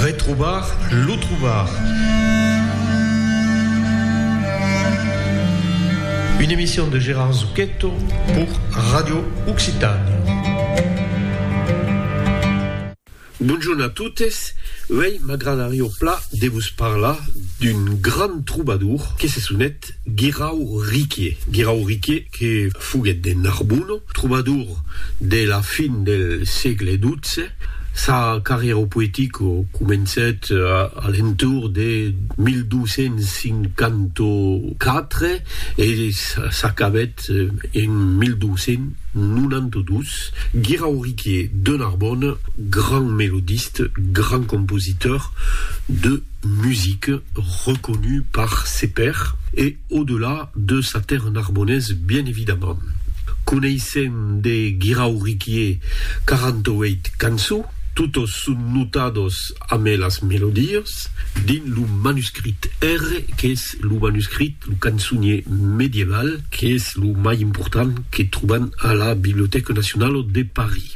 Retrobar lo trobar. Une emission de Gérard Zucchetto pour Radio Occitània. Bonjorn a totes, uèi m'agradarió pla de vos parlar d'un grand trobadour que se sonet Guirau Riquier. Guirau Riquier. que foguèt de Narbona, trobador de la fin del sègle xii, sa carrièra poetica comencèt a l'entorn de 1254 e s'acabèt en 1292, Guirauriquier de Narbona, grand melodiste, grand compositor de musique, reconut par ses pairs e. Au-delà de sa terre narbonnaise bien évidemment. Coneissèm de Guirau Riquier 48 cançons, totes son notades amé las melodies, dins lo manuscrit R, qu'es lo manuscrit, lo cançonier medieval, qu'es lo mai important que trobam a la Bibliothèque Nationale de Paris.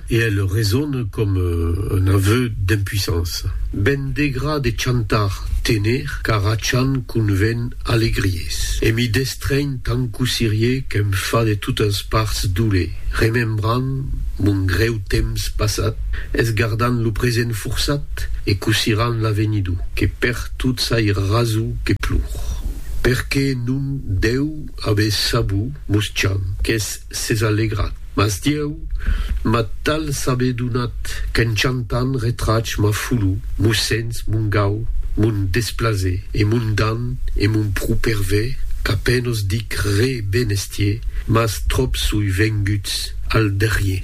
E elle resonne comme un aveu d'impuissance. Ben degra de chantar, tener, car a chan conven alegries. E mi destrènh tant cossirie qu'èm fa de totas parts doler, remembrant mon grèu temps passat, esgardant lo present forçat e cossirant l'avenido, que per tot sai raso que plor. Perqué non dèu aver sabut, mos chan, qu'es S'es alegrat, mas Dieu m'a tal saber donat qu'en chantant retrach ma fulu, mo sens, mon gau, mon desplaser e mon dan e mon pro perver qu'a penos dic re ben estier, mas tròp soi venguts al darrier.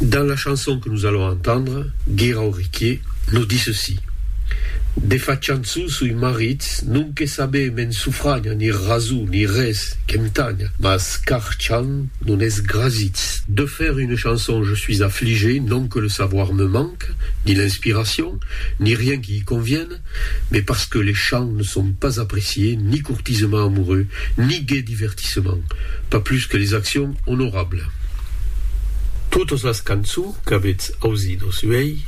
Dans la chanson que nous allons entendre, Guirau Riquier nous dit ceci, De fachant su sui marits, non que sabé me'n sufragna ni rasu ni res que em tagna, mas car chant non es grasits. De faire une chanson je suis affligé, non que le savoir me manque, ni l'inspiration, ni rien qui y convienne, mais parce que les chants ne sont pas appréciés ni courtisement amoureux, ni gai divertissement, pas plus que les actions honorables. Totes las cançons qu'avetz ausidos uèi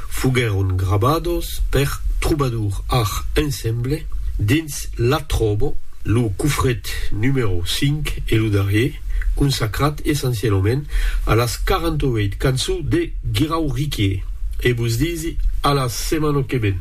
foguèron grabados per Troubadour Art Ensemble dins la tròbo. Lo cofret numèro 5 e lo darrier, consacrat essencialament a las 48 cançons de Guirauríquie. E vos disi a la setmana que ven!